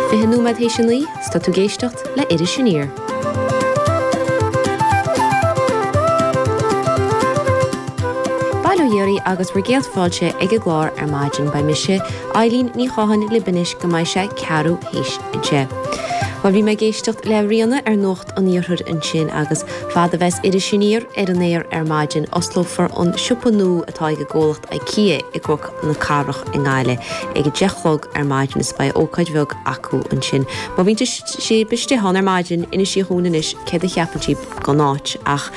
Fiche nóiméad théis a naoi, 's tá tú ag éisteacht le Iris Aniar. Bail ó Dhia oraibh agus bhur gcéad fáilte ag an gclár ar maidin. Beidh mise, Eilín Ní Chatháin libh anois go mbeidh sé ceathrú théis a deich. Bhuel bhí mé ag éisteacht le Ríona ar Nuacht an Iarthair ansin agus fad a bheas Iris Aniar ar an aer ar maidin osclófar an siopa nua atá ag an gcomhlacht Ikea i gCnoc na cathrach i nGaillimh ag a deich a chlog ar maidin is beidh ócáid bheag acu ansin. Má bhíonn sib istigh ann ar maidin, insígí dhúinn anois céard a cheapann sib den áit. Ach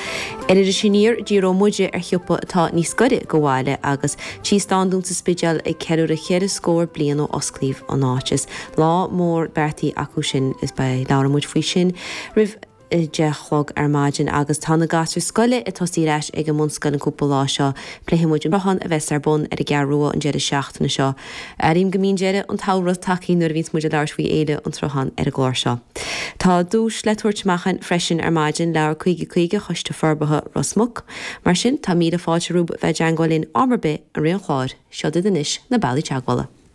ar Iris Aniar, díreoidh muide ar shiopa atá níos gaire do bhaile agus Tigh Standún sa Spidéal ag ceiliúradh ceithre scór bliain ó osclaíodh an áit. Is lá mór beartaithe acu sin is beidh, labhrann muid faoi sin roimh, deich a chlog ar maidin agus tá na gasúir scoile ag tosaí ar ais ag an mbunscoil an cúpla lá seo. Pléifidh muid an Sruthán a bheas ar bun ar an gCeathrú Rua an deireadh seachtaine seo. Airím go mbíonn deireadh an tsamhraidh tagtha nuair a bhíonns muid ag labhairt faoi Fhéile an tSrutháin ar an gclár seo. Tá duais le tabhairt amach againn freisin ar maidin, leabhar 50 50 Choiste Forbartha Ros Muc. Mar sin, tá míle fáilte romhaibh a bheith ag teangmháil linn am ar bith i rith an chláir. Seod iad anois na bealaí teagmhála.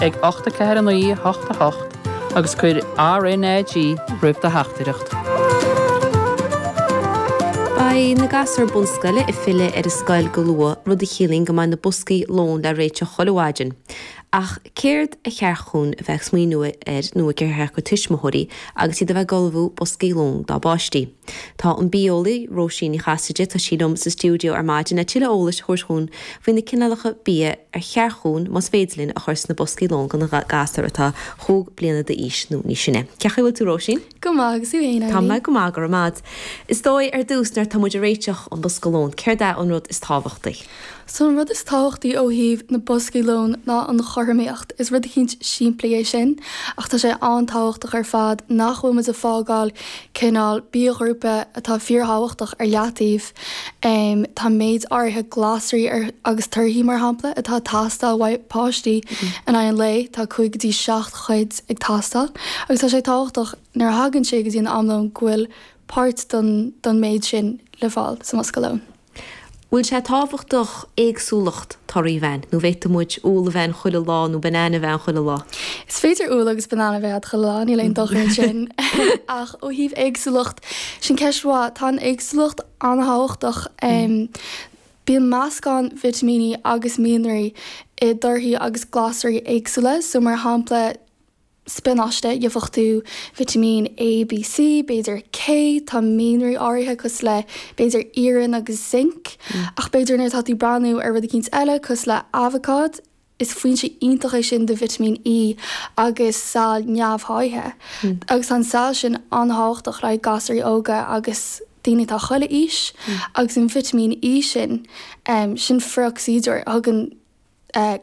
ag ocht a ceathair a naoi a hocht a hocht agus cuir RNAG roimh do theachtaireacht. Beidh na gasúir bunscoile ag filleadh ar an scoil go luath, rud a chiallaíonn go mbeidh na boscaí lóin le réiteach chuile mhaidin. Ach céard ar cheart dhúinn a bheith ag smaoineamh air nó gur cheart do thuismitheoirí agus iad a bheith ag ullmhú boscaí lóin dá bpáistí? Tá an bia-eolaí, Róisín Ní Chasaide, tá sí liom sa stiúideo ar maidin le tuilleadh eolais a thabhairt dhúinn faoi na cineálacha bia ar cheart dhúinn, más féidir linn, a chur sna boscaí lóin do na gasúir atá chúig bliana d'aois nó níos sine. Cén chaoi a bhfuil tú, Róisín? Go maith, agus thú fhéin, Eilín? Tá mé go maith, go raibh maith 'ad. Is dóigh, ar dtús, nuair atá muid ag réiteach an bosca lóin, céard é an rud is tábhachtaí? So an rud is tábhachtaí ó thaobh na boscaí lóin ná an chothromaíocht. Is rud eicínt simplí é sin, ach tá sé an-tábhachtach ar fad nach bhfuil muid ag fágáil cineál bia-ghrúpa atá fíorthábhachtach ar leataobh. Tá méid áirithe glasraí agus torthaí, mar shampla, atá ag teastáil uaidh páistí in aghaidh an lae, tá cúig go dtí seacht chuid ag teastáil, agus tá sé tábhachtach nuair a thagann sé go dtí an am lóin go bhfuil páirt don méid sin le fáil sa mbosca lóin. Bhfuil sé tábhachtach éagsúlacht torthaí a bheith ann, nó bhféadfadh muid úll a bheith ann chuile lá nó banana a bheith ann chuile lá? Is féidir úll agus banana a bheith ann chuile lá, níl aon dochar ansin. Ach ó thaobh éagsúlacht, sin ceist mhaith. Tá an éagsúlacht an-tábhachtach. Bíonn meascán vitimíní agus mianraí i dtorthaí agus glasraí éagsúla, so mar shampla, spionáiste, dhiúfachtú, vitimín A, B, C, b'fhéidir K, tá mianraí áirithe cosúil le, b'fhéidir, iarann agus zinc, ach b'fhéidir nuair atá tú ag breathnú ar rud eicínt eile cosúil le aibhacád, is foinse iontach é sin do vitimín E agus saill neamhsháithithe, agus tá an tsaill sin an-thábhachtach le haghaidh gasúirí óga agus daoine atá chuile aois, agus an vitimín E sin, sin frithocsaídeoir a thugann.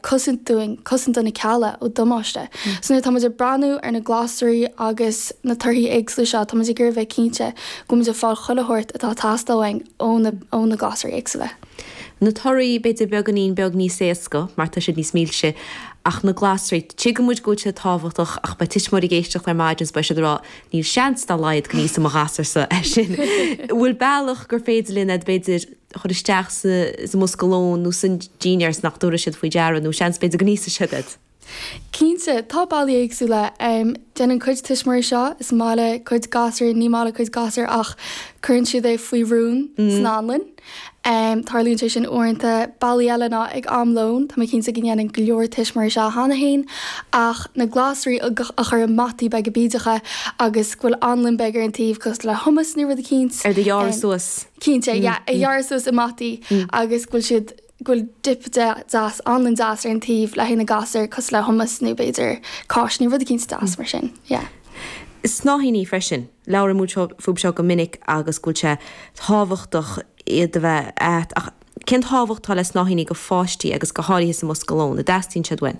cosaint dúinn, cosaint do na cealla ó damáiste. So nuair atá muid ag breathnú ar na glasraí agus na torthaí éagsúla seo, tá muid ag iarraidh a bheith cinnte go bhfuil muid ag fáil chuile shórt atá ag teastáil uainn ó na, ó na glasraí éagsúla. Na torthaí, b'fhéidir beagáinín beag níos éasca mar tá siad níos milse, ach na glasraí, tuigeann muid go bhfuil siad tábhachtach ach beidh tuismitheoirí ag éisteacht ar maidin is beidh siad ag rá, níl seans dá laghad go n-íosfaidh mo ghasúr-sa é sin. An bhfuil bealach gur féidir linn iad, b'fhéidir, chur isteach sa mbosca lóin nó sa dinnéar is nach dtabharfaidh siad faoi deara, nó seans, b'fhéidir, go n-íosfaidh siad iad. Cinnte, tá bealaí éagsúla. Déanann cuid tuismitheoirí seo, is maith le cuid gasúr, ní maith le cuid gasúr ach cuireann siad é faoi rún san anlann. Tarlaíonn sé sin uaireanta. Bealaí eile ná ag am lóin, tá mé cinnte go ndéanann go leor tuismitheoirí seo cheana féin, ach na glasraí a chur i mbataí beaga bídeacha agus go bhfuil anlann beag ar an taobh, cosúil le hummus nó rud eicínt. Iad a ghearradh suas. Cinnte, yeah, iad a ghearradh suas i mbataí agus go bhfuil siad, go bhfuil dip deas, anlann deas ar an taobh le haghaidh na ngasúr cosúil le hummus nó b'fhéidir cáisní, rud eicínt deas mar sin, yeah. Snáithíní freisin, labhraíonn muid faoi seo go minic agus go bhfuil sé tábhachtach iad a bheith ann, ach cén tábhacht atá le snáithíní do pháistí agus go háirithe sa mbosca lóin, an dteastaíonn siad uainn?